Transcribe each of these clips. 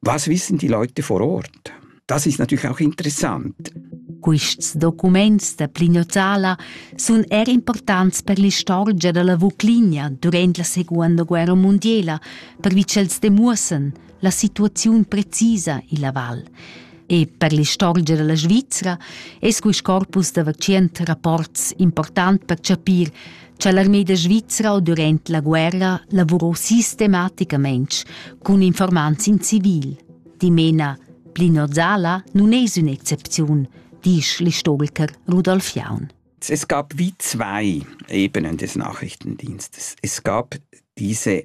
Was wissen die Leute vor Ort? Das ist natürlich auch interessant. Quests documents da Plignozala sun er importants per l'istorgia da la Vuclinia durant la Seconda Guerra Mondiela, pervi ch'els demuossan la situaziun precisa illa val. E per l'istorgia da la Svizra es quist corpus da vacient rapports important per chapir cha l'armeda svizra o durant la guerra lavurò sistematicamaing cun informants in civil. Dimena, Plinod Sala nun es ün'excepziun, disch l'istoriker Rudolf Jaun. Es gab wie zwei Ebenen des Nachrichtendienstes. Es gab diese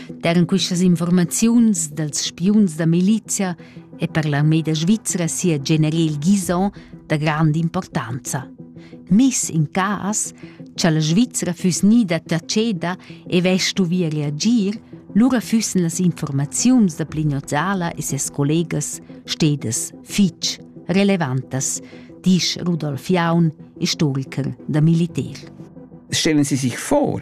Daran questas informaziuns dals spiuns da milizia è per l'armée da Svizzera sia general Guizon da grand'importanza. Miss in cas, cha la Svizzera füss gnida taceda e vestuvia reagir, lura füssen las informaziuns da Plignozala e ses collegas stedas fitg relevantas, disch Rudolf Jaun, istoriker da militär. Stellen Sie sich vor,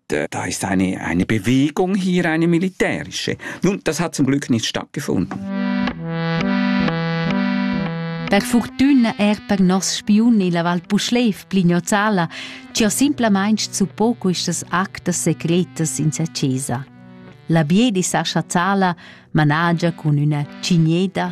da ist eine, eine Bewegung hier, eine militärische. Nun, das hat zum Glück nicht stattgefunden. Per fortuna erta nos spiun illa Val Puschlev, Blignozala, ci ho simplamain su poco istas actas secretas in sa chesa. La biedi Sascha Zala managia cun üna cigneda